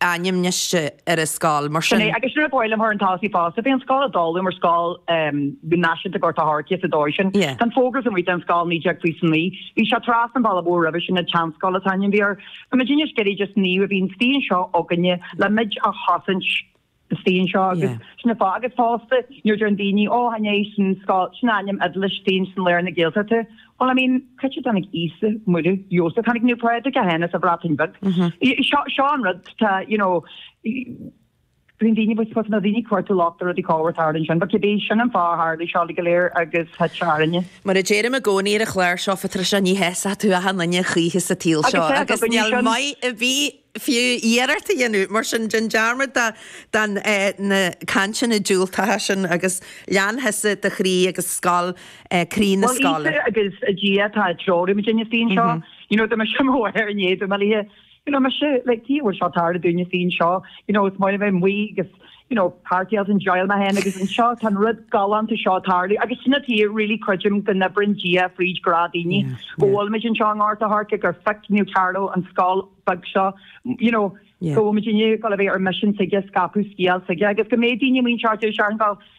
ainm baiste ar an scoil, mar sin. Agus nuair a buailim thar an Tallach Uí Phásaigh bhí an scoil ag dul mar scoil náisiúnta Gort a' Choirce sa dóigh sin. Tá an fógra amuigh den scoil 1929. Bhí sé trasna an bhealaigh mhóir roimhe sin, an tSeanscoil an t-ainm a bhí air. Tá muid anois ag iarraidh just naomh a bheith istigh anseo againne le muid a chosaint. istigh anseo agus sin an fáth agus fosta nuair a deireann daoine ó anois an scoil sin ainm Iodáilis istigh ansin i lár na Gaeltachta well I mean cá dtáinig Íosa, Muire, Iósaf, tháinig Naomh Pádraig é féin as an Bhreatain Bheag. Seo seo an rud tá you know bíonn daoine I suppose na daoine ag cuartú locht ar rudaí cá bhfuair tár ansin but cibé sin an fáth a tharlaigh seo uilig go léir agus thit seo thar fhoirne. Mar a deirim i gcónaí ar an chlár seo Phatricia ní shásóidh tú achan duine choíche sa tsaol seo agus níl maith ar bith fiú iarracht a dhéanamh. Mar sin, déan dearmad de na cainteanna diúltacha sin agus lean tusa do chroí agus scoil croí na scoile. Bhuel, Íosa agus Dia atá ag treorú muidinne fríd seo. You know, dá mbeadh sé mo mhaor i ndiaidh dom a liath, you know, mba seo, like, Dia a bhfuil seo ag tarlú dúinne féin seo, you know, is mairg mé amuigh agus, you know, party agus enjoyáil mé féin agus anseo tá an rud galánta seo a tarlú agus sin an áit a really creidim go n-oibreann Dia fríd grá daoine go bhfuilmid anseo i nGort a' Choirce gur phioc Naomh Carlo an scoil beag seo you know go bhfuilmid inniu ag gabháil a bheith ar mission s'aige scaipeadh scéal s'aige agus go mbeidh daoine muintir thuaisceart Dhún na nGall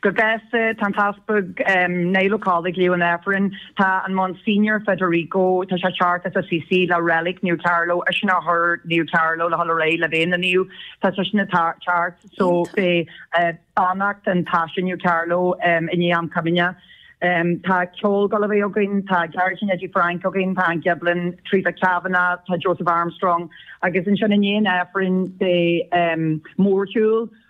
Go gasta, tá an tEaspag Niall Ó Colla ag léamh an Aifrinn, tá an Monsignor Federico, tá sé ag teacht as Assisi le Reilic Naomh Carlo, eisean a chuir Naomh Carlo le dhul ar aghaidh le bheith ina Naomh, tá seisean ag teacht, so beidh beannacht an taise Naomh Carlo i ndiaidh am Comaoine. Tá ceol ag gabháil a bheith againn, tá Gearóidín Eddie Frank againn, tá Ann Giblin, Theresa Kavanagh, tá Joseph Armstrong agus ansin i ndiaidh an Aifrinn beidh mórshiúl,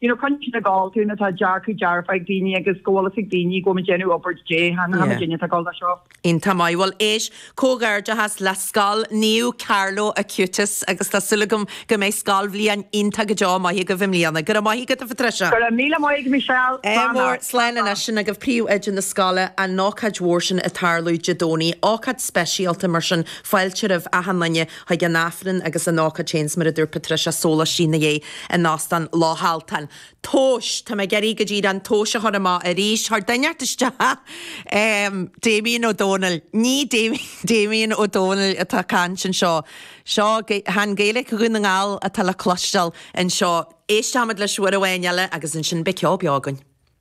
you know Croinnte na Gall tune atá dearcadh dearfa ag daoine agus go bhfuil a fhios ag daoine go bhfuil muid ag déanamh obair Dé hAon hAon yeah againne atá gá le seo. Iontach maith. Bhuel éist, comhghairdeachas le scoil Naomh Carlo Acutis agus tá súil agam go mbeidh scoilbhliain iontach go deo maith agaibh i mbliana. Go raibh maith agat, a Phatricia. Go raibh míle maith agat Michelle. Ádh mór. Slán leat. Slán slán leat. sin agaibh príomhoide na scoile an ócáid mhór sin ag tarlú Dé Domhnaigh. Ócáid speisialta mar sin fáilte roimh achan duine. chuig an Aifreann agus an ócáid féin 's mar a dúirt Patricia sóláistí ina dhiaidh in Óstán Loch Altan. Tomhas! Tá mé ag iarraidh go díreach an tomhas a chur amach arís chuir duine inteacht isteach! Em, Damien Ó Dónaill, ní Damien Ó Dónaill atá ag caint anseo. Seo, chan Gaeilic Dhún na nGall atá le cloisteáil anseo. Éisteochaimid leis uair amháin eile agus ansin beidh ceol beo againn.